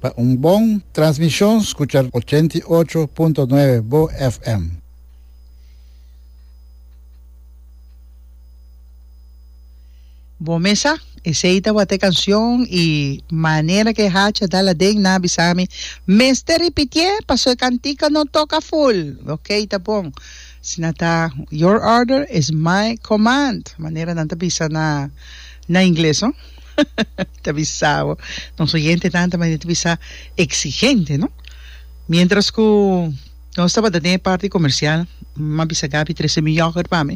Pa un bon transmishon skucha ochenta i ocho punto nuebe bo FM. Bo mesa, esei tabata e canción y manera que e hacha dal aden na bisami mester ripitié paso e cantica no toca full. Ok ta bon. Si na ta your order is my command manera nan ta bisa na na ingles no. Ta bisa bo, nos oyentenan tambe ta bisa exigente, no? Mientras cu nos tabata den e parti comercial, mi a bisa Gaby trece mi yoghurt pa mi,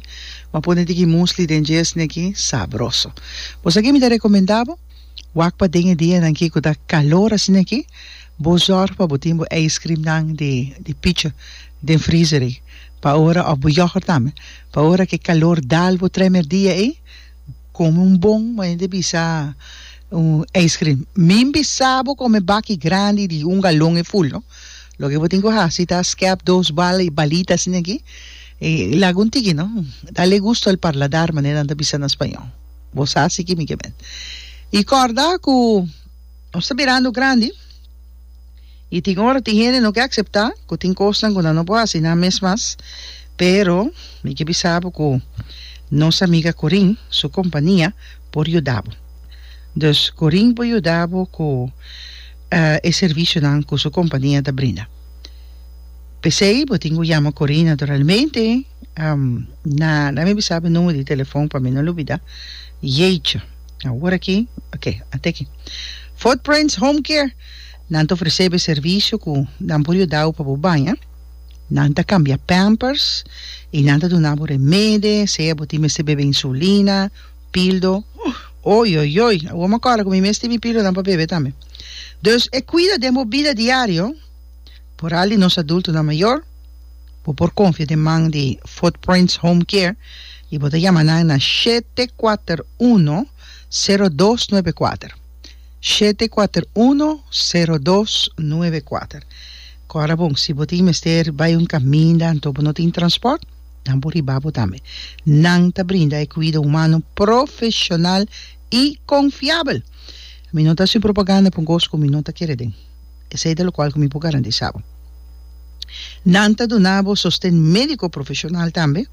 mi a pone tiki muesli den djesni aki, sabroso. Bo sa ki mi ta recomenda bo? Wak paden e dianan ki cu ta calor asin'aki, bo zorg pa bo tin bo ijscreamnan di di picha den freezer ey, pa ora, of bo yoghurt tambe, pa ora cu e calor dal bo tremer dia ey, Come un bon bo hende bisa un ice cream min bisabo come baki grandi di un galon e ful no loke bo tin ku hasi ta skep dos bal e balita asina aki e laga un tiki no dale gusto al parladar manera nan ta bisa na spañol bo sa si kimikamente i korda ku nos ta birando grandi. I tin ora tin hende no ke akseptá ku tin kosnan ku nan no por hasi nan mes mas, pero mi ke bisa bo ku nos amiga Corinne su kompania por yuda bo. Dus Corinne por yuda bo ku e servisionan ku su kompania ta brinda. P'esei bo tin ku yama Corinne naturalmente, na na mi bisa bo e numero di telefòn pa mi no lubida. Yecha! Awor aki, oke, a teken. Footprints Home Care. Nan ta ofresé bo e servisio ku nan por yuda bo pa bo baña. Nan ta kambia pampers i nan ta duna bo remede, sea bo tin mester bebe insulina, pildo. Oioioi! Awor mi a kòrda ku mi mes tin mi pildonan pa bebe tambe. Dus e kuida den bo bida diario, poral di nos adultonan mayor. Bo por konfia den man di Footprints Home Care i bo ta yama nan na shete kuater uno, sero dos nobe kuater. Shete kuater uno sero dos nuebe kuater Ku ora bon si bo tin mester bai un kaminda anto bo no tin transport dan bo riba bo tambe nan ta brinda e kuido humano profeshonal i konfiabel mi no ta hasi un propaganda pa un kos ku mi no ta kere den esei ta lokual ku mi por garantisa bo nan ta duna bo sosten mediko profeshonal tambe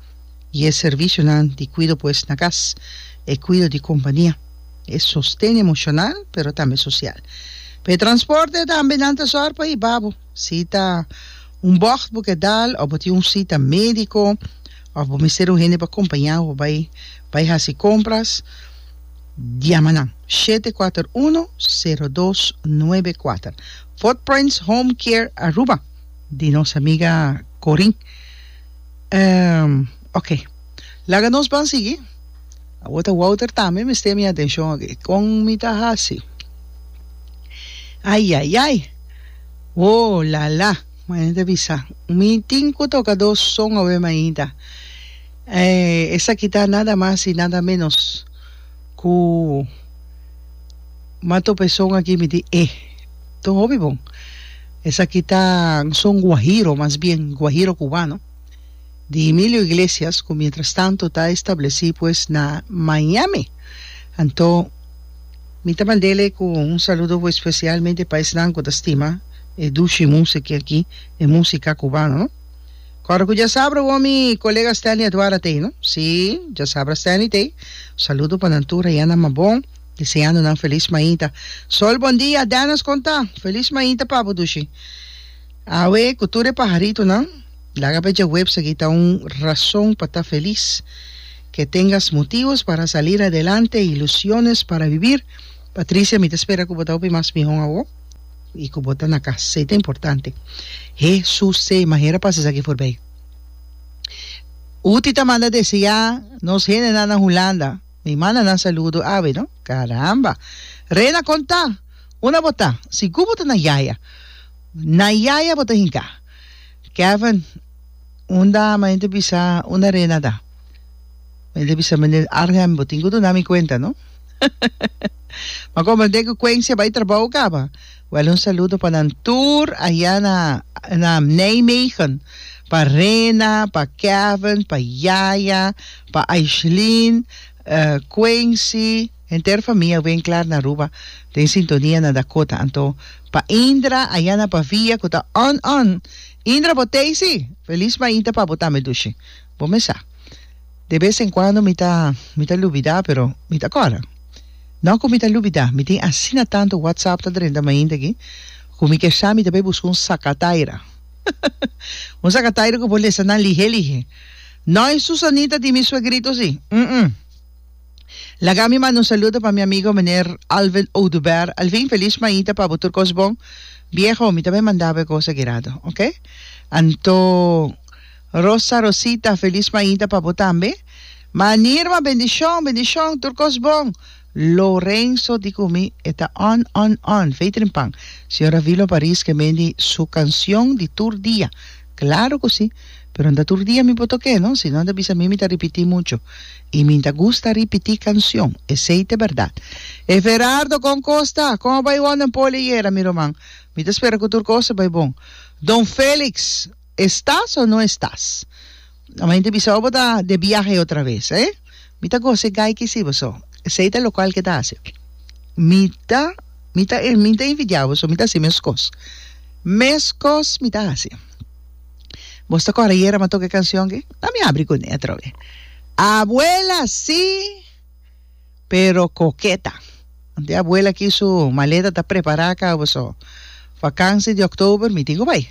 i e servisionan di kuido pues na kas e kuido di kompania. e sosten emocional pero tambe social. Pa e transporte tambe nan ta sor pa hiba bo, si ta un bocht bo kedal of bo tin un cita medico of bo mester un hende pa compaña bo bay bay haci compras yama nan shete kuater uno sero dos nuebe kuater Footprints Home Care Aruba di nos amiga Corin. Ok. Laga nos ban sigui. Awo ta Wouter tambe mester mi atencion aki. Con mi ta haci? Ayayay! Woo lala! Mañana ta bisa. Mi tin cu toca dos son awe mainta. Eh, esaki ta nada mas y nada menos cu Mato Pezon aki mi di E. Ton hopi bon. Esaki ta un son guajiro mas bien, guajiro cubano. di Emilio Iglesias cu mientras tanto ta estableci pues na Miami. Anto mi ta mandele cu un saludo bo especialmente pa esnan cu ta stima e dushi musica aki, e musica cubano no. Cora cu djasabra wou mi colega Stanley Aduara ta ey no? Si, djasabra Stanley ta ey. Saludo pa nan tur ayan na Mabon, deseando nan feliz mainta. Sol Bondia, Dennis con ta? Feliz mainta pa bo dushi. Awe ku tur e paharitonan, laga pe djaweps aki ta un rason pa ta felis. Ke tengas motivos para salir adelante e ilusiones para bibir. Patricia, mi ta spera ku bo ta hopi mas mihó awo i ku bo ta na kas. Esei ta importante. Hesusee, manera pa esaki forbei. Uti ta manda deseá nos hendenan na Hulanda. Mi manda nan saludo awe, no? Karamba! Rena, kon ta? Unda bo ta? Sigur bo ta na Yaya. Na yaya bo ta hinka. Kevin, Un dama enta bisa una rena ta. Enta bisa Meneer Arnhem, bo tin ku duna mi kuenta, no? Ma komo den ku Kwensia bai trabou kaba. Wèl un saludo pa nan tur ayá na, na Nijmegen. Pa Rena, pa Kevin, pa yaya, pa Aishlin, eh, Kwensi. Henter famia wen klar na Aruba den sintonia na Dakota anto pa Indra ayana pa via ku ta on on Indra bo tei si? Felis mainta pa bo tambe dushi bo mes sa de bes en kuando mi ta mi ta lubida pero mi ta kòrda no ku mi ta lubida mi tin asina tantu whatsapp ta drenta mainta aki ku mi kier sa mi ta bai buska un sakataira un sakataira ku por lesa nan lihe lihe no e Susanita di mi suegrito si ùm ùm. Laga mi manda un saludo pa mi amigo meneer Alvin Oduber Alvin feliz mainta pa bo tur cos bon viejo mi ta bay manda bo e cosa guirado ok anto Rosa Rosita feliz mainta pa bo tambe man Irma bendicion bendicion tur cos bon Lorenzo di cu mi e ta on on on fey trimpan señor Avilo Paris ke mendi su cancion di tur dia Claro cu si. Pero nta tur dia mi por toke no, si no ta bisa mi mi ta ripiti mucho. Y mi ta gusta ripiti cancion. Esey ta berdad. Hey Ferardo con cos ta? Con a bay wonder Poli ayera mi roman? Mi ta spera cu tur cos a bay bon. Don Felix, Estas o no estas? Amen te bisa obo ta de biahe otra vez eh mi ta goza e gai ki si boso esey ta local ke ta hace mi ta mi ta mi ta envidia boso mi ta haci meskos meskos mi ta haci bos ta kor ayer a mi a toca e cancion ke ta mi abri kuné atrave abuela si pero koketa. Anto e abuela aki su maleta ta prepará kaba so vakansi di oktober mi tin ku bai.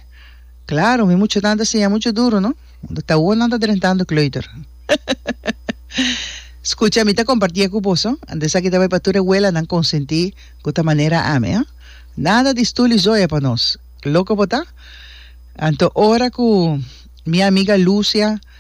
Klaro mi muchanan ta siña muchu duru no, unda ta awor nan ta drentando kleuter. Skucha mi ta kompartié ku boso, ante esaki ta bai pa tur e welanan konsentí ku ta manera ami, a. Nada di stul i zoya pa nos. Loko bo ta? Anto ora ku mi amiga Lucia.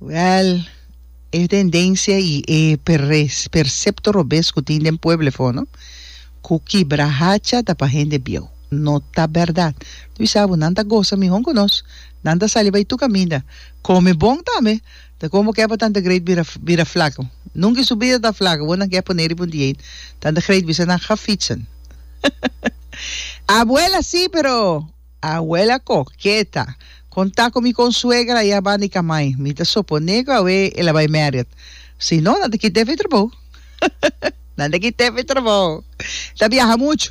Wèl, e tendensia i e percepto robes ku tin den pueble for no, ku kibra hacha ta pa hende bieu, no ta bèrdat. Luis Abu, Nan ta gosa mihon ku nos, nan ta sali bai tur kaminda, kome bon tambe. Ta komo ke pa tanta great bira bira flaku. Nunka i su bida ta flaku, bo nan ke pone riba un diet. Tanta great bisa nan ga fitsen. Abuela, Si, pero. Abuela koketa, kon ta ku mi kon suegra ya ban di kamai, mi ta soponé ku awe el a bai mèrèt. Si no, nan ta kita efek trabou. Nan ta kita efek trabou. Ta biaha muchu.